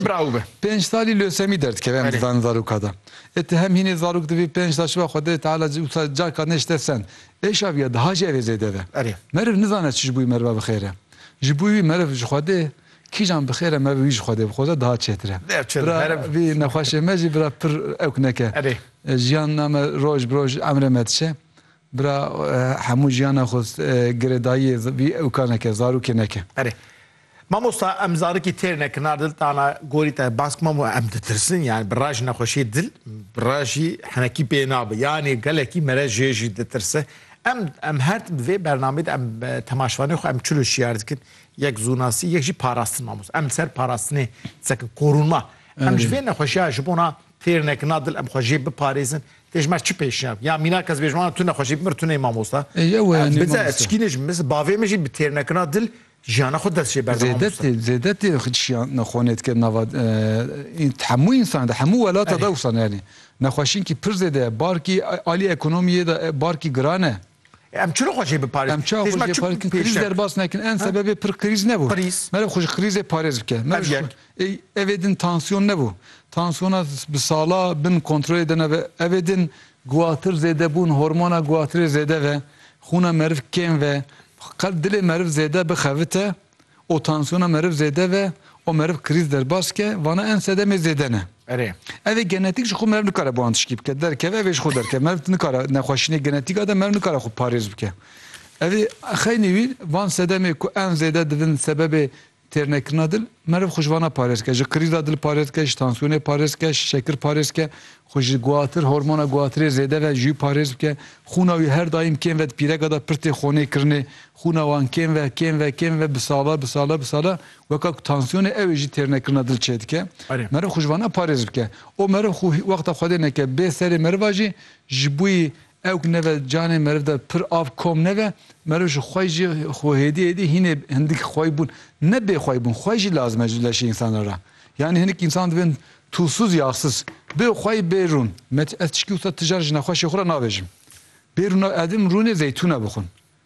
Bravo be. Pênc salî lösemî derdikeve em di van zaroka de. Ê ti hem hînê zarok divî pênc sal şiva Xwedê Teala wisa carka nêşte send. Ê şaviya diha jî ev ê zêde be. Meriv nizane çi ji bo wî meriva bi xêr e. Ji bo wî meriv ji Xwedê kîjan bi xêr e meriv wî ji Xwedê bixwaze diha çêtir e. Bira vî nexweşê me jî bira pir ewk neke. Jiyan name roj bi roj emrê me diçe. Bira hemû jiyana xwe girê dayiyê vî ewka neke, zarokê neke. Erê. Mamosta em zarikî têr nekin a dil tana gorî te bask mamo em ditirsin yanî bi ra jî nexweşiyê dil bi ra jî henekî pê nabe yanî gelekî mere jê jî ditirse em em her tim di vê bernameyê de em temaşvanê xwe em çilo şiyar dikin yek zûnasî yek jî parastin mamos em li ser parastinê disekin korûnma em ji vê nexweşiya ji bona têr nekina dil em xwe jê biparêzin Te ji me çi pêşiya Ya mînak ez bêjim ana tu nexweşî bimir tu nê mamosta. Ew e nê mamosta. Çikînê ji min bavê min jî bi têrnekirina dil jiyana xwe dest jê berda mamosta. Zêdetê zêdetê çiyan nexwanê dike nava hemû însan de hemû welata de wisa ne yanî nexweşînkî pir zêde ye barkî alî ekonomiyê de barkî giran e. Em çi xwe jê biparêz? Em çawa xwe jê parêz krîz derbas nekin en sebebê pir krîz nebû. Mere xwe ji krîzê parêz bike. Ev yek. Evê din tansiyon nebû. Tansiyona bi sala bin kontrolê de nebe. Evê din guhatir zêde bûn, hormona guhatirê zêde ve, xûna meriv kêm ve. Qet dilê meriv zêde bixevite. û tansiyona meriv zêde ve û meriv krîz derbas ke, vana em sedemê zêde ne. Erê. Evê genetîk ji xwe meriv nikare bi wan tişkî bike. Derkeve evê ji xwe derkeve. Meriv nikare nexweşînê genetîka de meriv nikare xwe parêz bike. Evê xeynî wî van sedemê ku em zêde dibin sebebê têrnekirina dil, meriv xwe ji vana parêz bike. Ji krîza dil parêz bike, ji tansiyonê parêz bike, ji şekir parêz bike. Xwe ji guatir, hormona guatirê zêde ve jû parêz bike. Xûna wî her daîm kêm ve di pîreka de pir tê xonê kirinê. Xûna wan kêm ve, kêm ve, kêm ve bi sala, bi sala, bi sala weka ku tansiyonê ew ê jî têrnekirina dil çêdike. Meriv xwe ji vana parêz bike. O meriv xwe wexta Xwedê neke. Bê serê meriva jî ji bo Ew ku nebe canê meriv de pir av kom nebe, meriv ji xwe jî xwe hêdî hêdî hînê hindik xwey bûn. Ne bêxwey bûn, xwey jî lazim e ji leşê însanê re. Yanî hinik însan dibin tûsûz yaxsûz. Bê xwey bê rûn. Me ez tişkî wisa ti jar ji nexweşê xwe re nabêjim. Bê rûna edim rûnê zeytûne bixwin.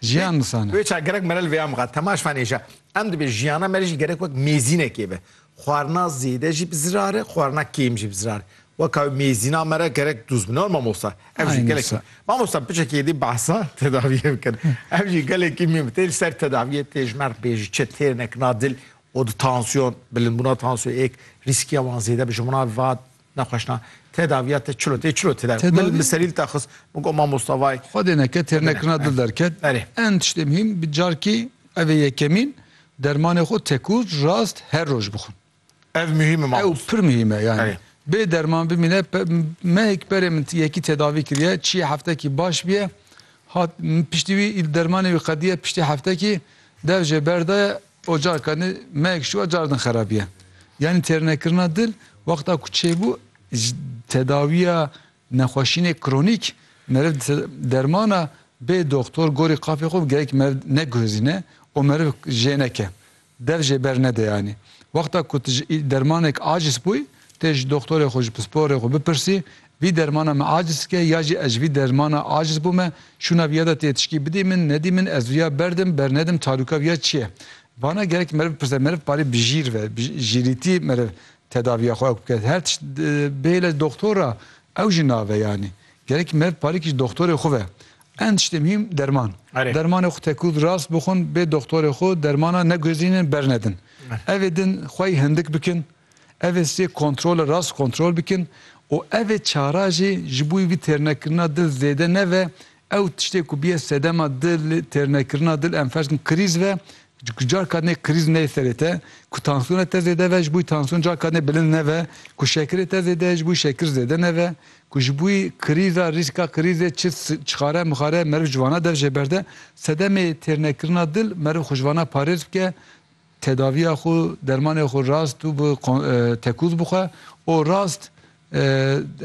Jiyan misan e. Wê çar gerek mere li vêya mixa Temaş fanê je. Em dibê jiyana me re jî gerek wek mêzînekê be. Xwarina zêde jî bi zirar e, xwarina kêm jî bi zirar e. Weka wê mêzîna me re gerek dûz bine mamosta. Ev jî gelekî. Mamosta piçekî êdî behsa tedaviyê bikin. Ev jî gelekî mîm tê li ser tedaviyê tê ji merg bê ji çi têrine kina dil û di tansiyon, bilindbûna tansiyon êk rîskiya wan zêde bi ji minan ve Nexweşna, tedaviya te çilo tê çilo tedavi. Tedavi? Min li serî li te xist, min got mamosta vay. Xwedê neke têr nekirina dil derket. Berê. En tiştê muhîm bi carkî ev ê yekemîn dermanê xwe tekur rast her roj bixwin. Ev muhîm e mamosta. Ew pir muhîm e yanî. Berê. Bê derman bimîne pe mehek berê min yekî tedavî kiriye çiyê heftekî baş biye hat min piştî wî îl dermanê wî qediye piştî heftekî dev jê berdaye O carkanî meyek şû a car din xerabîye. Yanî têrnekirina dil wexta ku çêbû ji tedawîya nexweşînê kronîk meriv di dermana bê doxtor gorî qafê xwe bi gerek meriv neguhizîne û meriv jê neke. Dev jê bernede yanî. Wexta ku tu ji dermanek acîs bûyî tê ji doxtorê xwe ji pisporê xwe bipirsî Vî dermana me aciz dike ya jî ez ji vî dermana aciz bûme, şûna vî ya de tê tişkî bidî min, nedî min, ez vî ya berdim, bernedim, tarûka vî ya çi ye? Vana gerek meriv bipirse, meriv parê bi jîr ve, bi jîrîtî meriv tedavîya xwe ewk bike. Her tişt bihêle doxtor a, ew jî nave yanî. Gerek meriv parê kî ji doxtorê xwe ve. Ehm tiştê muhîm derman. Dermanê xwe tekûz rast bixwin, bê doxtorê xwe, dermana neguhezînin, bernedin. Evê din xwe yî hindik bikin, Ev ê sê kontrole rast kontrol bikin û ev ê çara jî ji bo vî têrnekirina dil zêde nebe, ew tiştê ku bîye sedema dil têrnekirina dil em ferz bikin krîz ve ku carka din ê krîz neyê serê te, ku tansiyona te zêde ve ji bo tansiyon carka din ê bilind nebe, ku şekirê te zêde ye ji bo şekir zêde nebe, ku ji bo krîza rîska krîzê çi çixare mixare meriv ji vana dev jê berde, sedemê têrnekirina dil meriv xwe ji vana parêz bike. Tedaviya xwe, dermanê xwe rast û bi tekûz bixwe û rast.